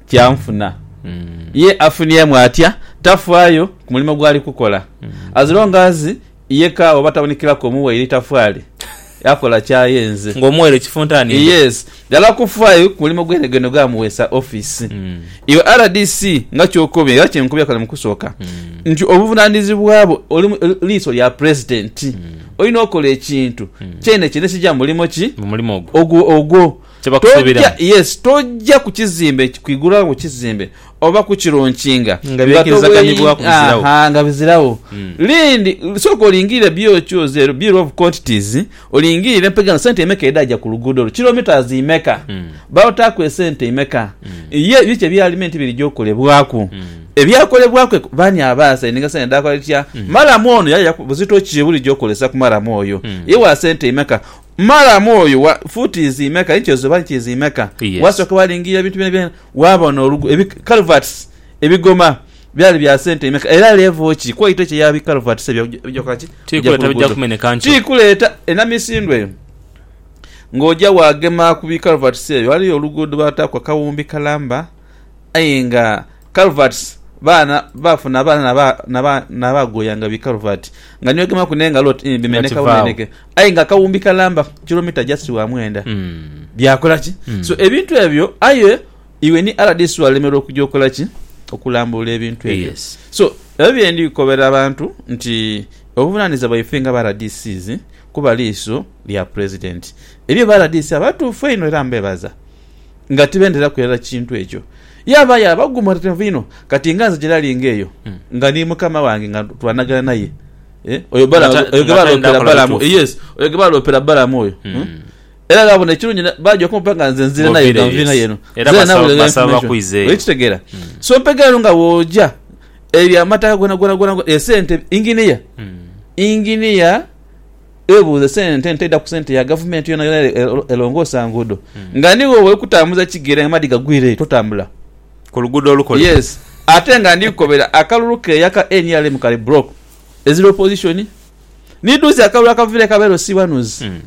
kya nfuna. Ye afuniemu atya? Tafaayo ku mulimo gw'ali kukola. As long as ye ka oba tabonekeraku omuwaire itafaali, akola ky'ayenze. Nga omuwaire ekifuntaani mbu. Yes. Ghala kufaayo ku mulimo gwenegene ogwamuweesa ofiisi. Iwe rdc nga ky'okobye era kye nkobye kale mu kusooka nti obuvunaanizibwa bwo oli liiso lya Pulezidenti, olina okola ekintu kyene kyene ekija mu mulimo ki? Mu mulimo ogwo. Ogwo, ogwo. Toja, yes, toja ku kizimbe, kwigulawo ku kizimbe oba kukirunkinga nga byekirizaganibwaku biziragho. Aha, nga biziragho. Mm. Lindi, sooka olingirire byo ki oze ero, bill of quantities, olingirire mpegano sente emeka edhaja ku luguudo olwo, kilometres imeka, Mm. baotaaku esente imeka, Mm. ye biki ebyalime nti birija okolebwaku, Mm. ebyakolebwaku eko, bani abaasayininga sente dhakola kitya, Mm. maramu ono yali aja ku, buzito ki obulija okolesa ku maramu oyo, Mm. ye wa sente imeka. Malamu oyo wa fuuti izimeka, inchi ezo oba inchi izimeka, Yes. wasooka walingiira ebintu byona byona, waabona olugu, ebi culverts ebigoma byali bya sente imeka, era level ki quality ki eya bi culverts ebyo ebija ebija kola ki? Ti Ebija ku kuleeta bijja luguudo. kumeneka nkyo. Ti kuleeta enamisindwa eyo. Ng'oja waagema ku bi culverts ebyo, ghaliyo oluguudo baataaku akawumbi kalamba. aye nga Calvert baana baafuna abaana na ba, na ba, na bagoyanga bi Calvert nga niwegemaku n'engalo oti ii, Nga bimeneka kivaawo. bumeneke. Aye nga akawumbi kalamba kilomita just wa mwenda. Mm. Byakola ki? Mm. So ebintu ebyo, aye iwe ni RDC walemerwa okuja okola ki? Okulambulula ebintu ebyo. Yes. So ebyo bye ndi kukobera abantu nti obuvunanizibwa bwaife nga ba RDCs kuba liiso lya President. Ebyo ba RDC abatuufu einho era mbebaza. Nga tibenderaku irala kintu ekyo. Yaabaayo abaguumarirevu inho. Kati nga nze gyerali nga eyo, nga ni mukama wange, nga twanagana naye, e, oyo Nga Balaamu, ta- oyo gwe nga tali baaloopera nakola Balaamu, bituufu. yes, oyo gwe baaloopera Balaamu oyo. Hmm? Era baabona ekirungi, ne- baagya okumpa nga nze nzire naye, Ng'oviire, nga nviire yes. naye eno. Era Nzire basaba- nawe nga basaba information. bakwizeeyo. Olikitegeera? So mpegera eno nga bw'ogya, ebyo amataka gona gona gona, esente, inginiya, inginiya, Webuuze sente nti eidha ku sente ya gavumenti yonayona ere elongoosa nguudo hmm. nga nigho bwoli kutambuza kigere nga amaadhi gagwiireyo totambula ku luguudo olukole. Yes ate nga ndi kukobera akalulu keeya ka nrm kali broke ezira opposition nidhuuzi akalulu akaviire ka LC wanuzi hmm.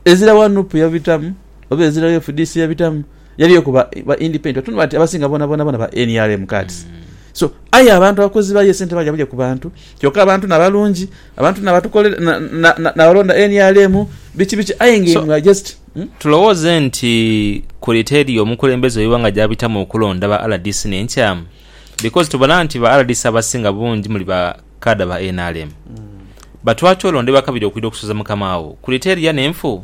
ezira wa nup yabitamu oba ezira wa fdc yabitamu yaliyo ku ba independent tunula nti abasinga bona bona bona ba nrm kati hmm. so aye abantu abakozi bayo esente balya bulya ku bantu kyoka abantu nabalungi Abantu nabatukolera na, na, na, nabalonda nrm biki biki aye nga So, imwe just hmm? Tulowooze nti kuli teri omukulembeze oiwa nga gyabitamu okulonda ba rdc n'enkyamu? Because tubona nti ba rdc abasinga bungi muli ba kaada ba nrm. Batwaki olondebwa kabiri okwidha okusuza mukama wo? Kuli teri ya n'enfu?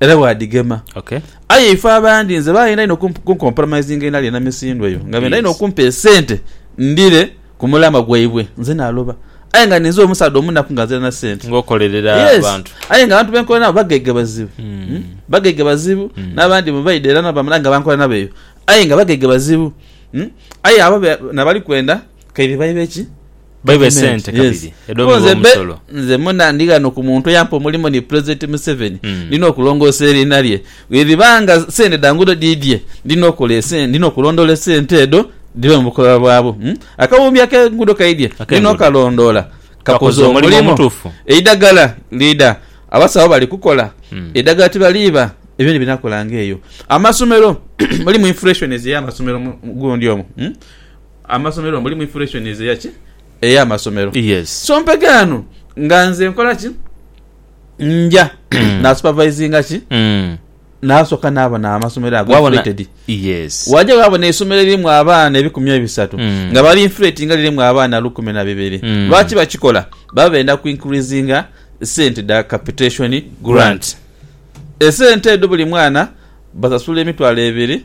Era bw'adigema. Ok. Aye ife abandi nze baayenda inho okump- kunkompromisinga enhali enamisindwa eyo nga benda inho Yes. okumpa esente ndhire ku mulamwa gwaibwe. Nze naaloba. Aye nga ninze omusaadha omunaku nga nzira na sente. Ng'okolerera Yes. abantu. Aye nga abantu be nkola nabo bagaiga bazibu. Mm. Mm? Bagaiga bazibu. Mm. N'abandi mwe baidha era na bamala nga bankola nabo eyo. Aye nga bagaiga bazibu. Mm? Aye abo be- nabali kwenda kaidhi baibe ki? Baibe sente kabiri edho mugha omusolo. Nze muna ndi ghano ku muntu eyampa omulimu ni Pulezidenti Museveni. Ndina okulongoosa eriina lye. Bwedhiba nga sente dha nguudo dhiidhie, ndina okola esente, ndina okulondoola esente edho dhibe mu bukoba bwabwo. Akawumbi ak'enguudo kaidhie, ndina okalondoola kakoze omulimu. Eidhagala liidha, abasawo bali kukola. Eidhagala tibaliiba, ebyo ni binakolanga eyo. Amasomero, mulimu inflations ey'amasomero mu gundi omwo. Amasomero mulimu inflation eya ki? Eya masomero. Yes. So mpeghe ano nga nze nkola ki? Nja na supervisinga ki? Nasoka nabona amasomero ago inflated. Yes. Waja wabona eisomero eririmu abaana ebikumi ebisatu nga bali inflatinga lirimu abaana lukumi na bibiri. Lwaki bakikola? Baba benda ku increasinga sente dha capitation grant. Esente edho buli mwana basasula emitwalo ebiri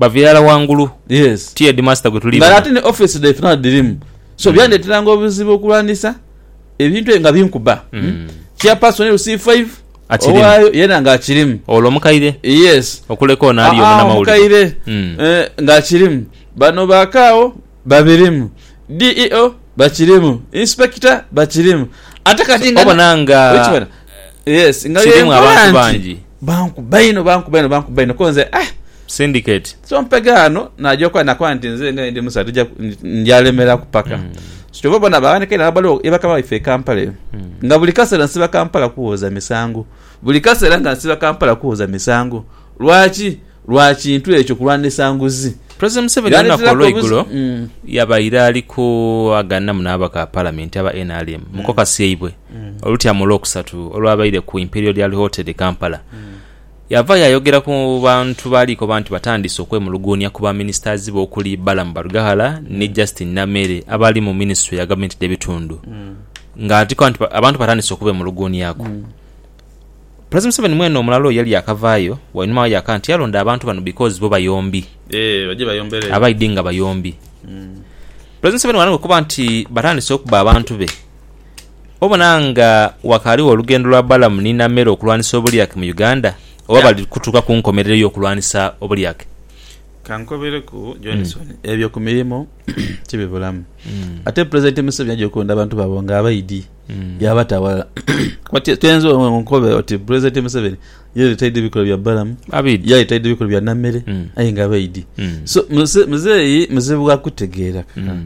Bava irala ghangulu. Yes. Ti headmaster gwe tuli Nga bano. ate ni office dhaife naadho dhirimu. So byandeteranga obuzibu okulwanisa ebintu ebyo nga binkuba. Chairperson e Rusizi Five Akirimu. owaayo yeena nga akirimu. Olwo omukaire Yes. okuleka ono ali Aa, omunamawulire. omukaire Mm. eh, nga akirimu. Bano ba Kaawo. Babirimu. DEO bakirimu. Inspector bakirimu. Ate kati nga. Obona nga. Okibona? Yes. Nga bye nkola nti. Bankuba inho, bankuba inho, bankuba inho. Ko nze ah. Syndicate. So mpega ghano, naja okuba nakoba nti nze nga ndi musaadha tija, nja lemeraku paka. Mm. So kyova obona baghanhika inho ababaliwo ye bakama baife e Kampala eyo. Mm. Nga buli kasera nsiba Kampala kuwoza misango. Buli kasera nga nsiba Kampala kuwoza misango. Lwaki? lwa kintu ekyo kulwanisa nguzi. President Museveni olunaku olweigulo yabaire ali ku agananamu n'ababaka ba palamenti aba nrm mu kokasi yaibwe olutyama olwokusatu olwabaire ku Imperial Dial Hotel e Kampala. Yava yayogera ku bantu baali koba nti batandise okwemuluguunia ku ba ministers be okuli Balaam Barugahara ni Justine Nameere abali mu minisitule ya gavumenti dh'ebitundu nga abantu batandise okubemuluguuniaku. President Museveni mwene omulala oyo yali yakavaayo wainuma wa yaka nti yalonda abantu bano because bo bayombi. Eeh baje bayombere eyo. Abaidhi nga bayombi. President Museveni bwalanga okuba nti batandise okubba abantu be obona nga wakaaligho olugendo lwa Balamu ni Namere okulwanisa obulyake mu Uganda oba Yeah. bali kutuuka ku nkomerero y'okulwanisa obulyake? Kankobereku Johnson, ebyo ku mirimu tibibulamu. Ate President Museveni aja okulonda abantu be abo nga abaidhi. yabata awalala kuba ti- toyinza o- onkobe oti pulezidenti museveni yaleeta idi ebikolwa bya balamu Abidi. yaleeta idi ebikolwa bya namere Mm. aye nga abaidi Mm. so muze- muzeeyi muzibu wa kutegeera Mm.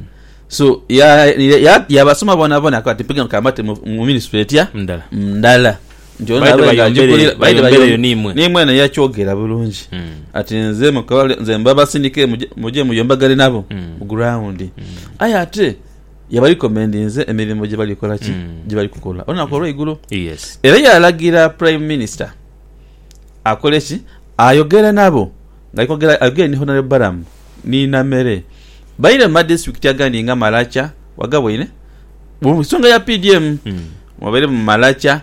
so ya- ya- ya- yabasoma bonabona akawa ti mpige nkambate mu mu minisitule etya Ndala. ndala nti ono Baide abe nga bayombere- agikulira- baide bayombere bayo- yo niimwe. niimwe naye yakyogera bulungi Mm. ati nze mukawale nze mbabasindike muje- muje muyombagane nabo Mm. ku ground aye ate Yabalikomendinze emirimo gye bali kola ki? Gye bali kukola olunaku olw'eigulo. Era yaalagira Prime Minister akole ki? Ayogere nabo ng'ali kwogera, ayogere ni Honourable Balaam ni Namere baire mu madisiturikiti agandi nga Maracha, wagaboine? Mu nsonga ya PDM, mwabaire mu Maracha,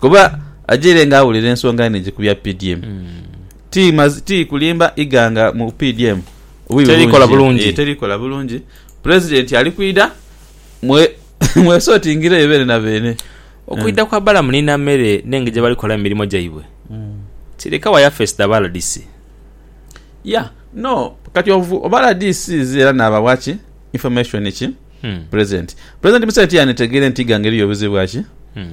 Kuba ajaire nga awulira ensonga nhingi ku bya PDM. Ti maz- ti kulimba ighanga mu PDM bubi Terikola bulungi. Eh, terikola bulungi. President ali kwidha mwe mwesotingireyo beene na beene. Okwidha kwa Balamu ni Namere n'engeri gye bali kukolamu emirimo gyaibwe kireka wa yafeesi dha ba rdc. Yeah, no, kati ovu- oba RDCs era naabagha ki information ki Hmm. president? President Museveni tiyanditegere nti ighanga eriyo buzibu bwa ki? Hmm.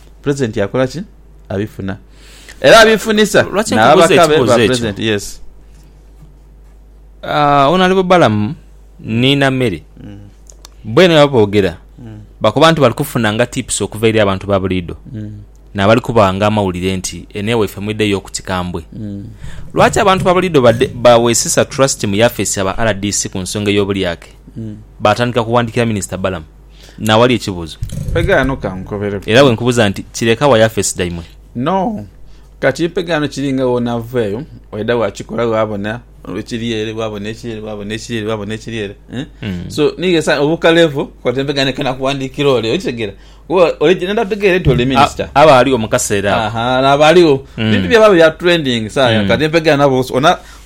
Pulezidenti akola ki? Abifuna era abifunisa Lwaki nkubuuza n'ababaka be ekibuuzo ba ekyo? pulezidenti. Yes. Ah, Honorable Balamu ni Namere bwena bwebaba boogera bakoba nti bali kufunanga tips okuva eri abantu ba buliido Mm. n'abali kubaghanga amawulire nti eno ewaife mwidheyo okutikambwe. Mm. Lwaki abantu ba buliido badde- baweesesa trust mu yafeesi ya ba rdc ku nsonga ey'obulyake Mm. baatandika kuwandiikira Minisita Balamu? n'awali ekibuzo. Mpega ghano ka nkukobereku. Era bwe nkubuza nti, Kireka wa Yafesi daimwe? No. Kati mpega ghano kiri nga gh'onava eyo, waidha waakikola waabona ekiri ere, waabona ekiri ere, waabona ekiri ere, waabona ekiri ere. So, niighe sa, obuuka levo, kola mpega ghano kena kuwandiikira ole. Okitegera? Kuba oli gye nda tegeera nti oli minisita. A, abaaliwo mu kaseera ako. Aha, n'abaaliwo. Bintu byabawo bya trending saagha. Kati mpega ghano abo, ona,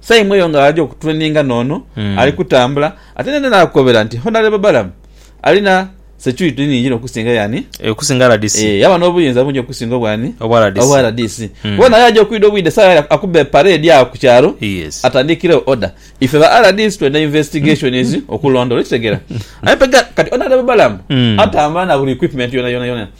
Saimo eyo nga ali okutureninga n'ono ali kutambula ate naidha naakukobera nti Honarebo Balamu alina security nhingi inho okusinga y'ani? Eh, okusinga RDC. Eh, yaba n'obuyinza bungi okusinga obwani? Obwa RDC. Obwa RDC. Mm. Kuba naye aja okwidha obwidha esawa yali akuba epareedi agho ku kyalo Yes. atandiikiregho order. Ife ba RDC twenda investigations okulondoola, okitegera? Aye pega kati Honarebo Balamu Mm. atambula na buli equipment yonayona yona.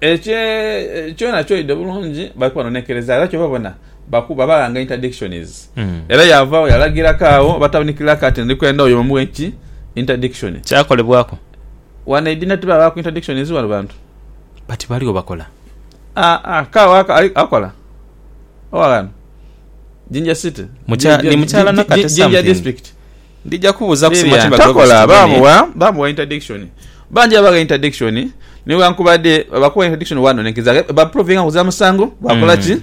Ekyo kyona kyoidhe bulungi bali kuba nonekereza era kyova bona bakuba balanga interdictions mm. era yavagho yalagiraku agho batabunikilaku ati ndikwenda oyo omuwe ki interdiction kyakolebwaku wano eidhina tibabaku interdictions wano bantu but baligho bakola aa ah, ah, kagho akola owaghano jinja city mukya, ni mukyala nakate something Ndija kubuza ku Biibya mutima gwe ntakola gusitume ni. bamuwa bamuwa interdiction bangi babagha interdiction nighankubade bwebakugha interdiction wanonekeza ghe ba provinga kuza musango bakola ki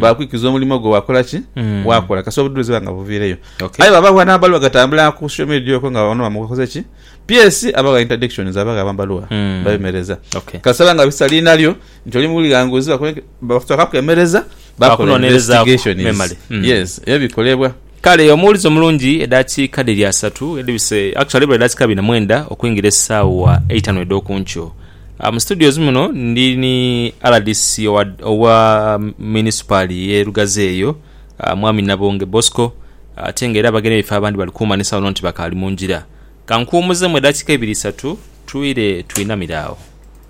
bakwikiza omulimo gwo wakola ki Mm. wakola kasita obudhulizi buba nga buvireyo Okay. aye bwabagha nabaluwa agatambula ku social media okwo nga ono bamukoze ki PS abagha interdictions abagha amabaluwa Mm. babemereza Okay. kasita banga bisa linalyo nti oli mughanguzi bakuwe Bakutoka kwemereza bakola investigation hmm. yes ebikolebwa Kale omuwulize omulungi edakiika dhiri asatu edhibise actually ebula edakiika bina mwenda okwingira esaawa eitano edhokunkyo Uh, mu studios muno ndi ni rdc owa, owa munisipaali ye lugazi eyo uh, mwami nabonge bosco uh, ate nga era abagenda ebifo abandi bali kumanisa wano nti bakaali mu ngira kankuwumuzemu edakika ibiri isatu twire twinamire awo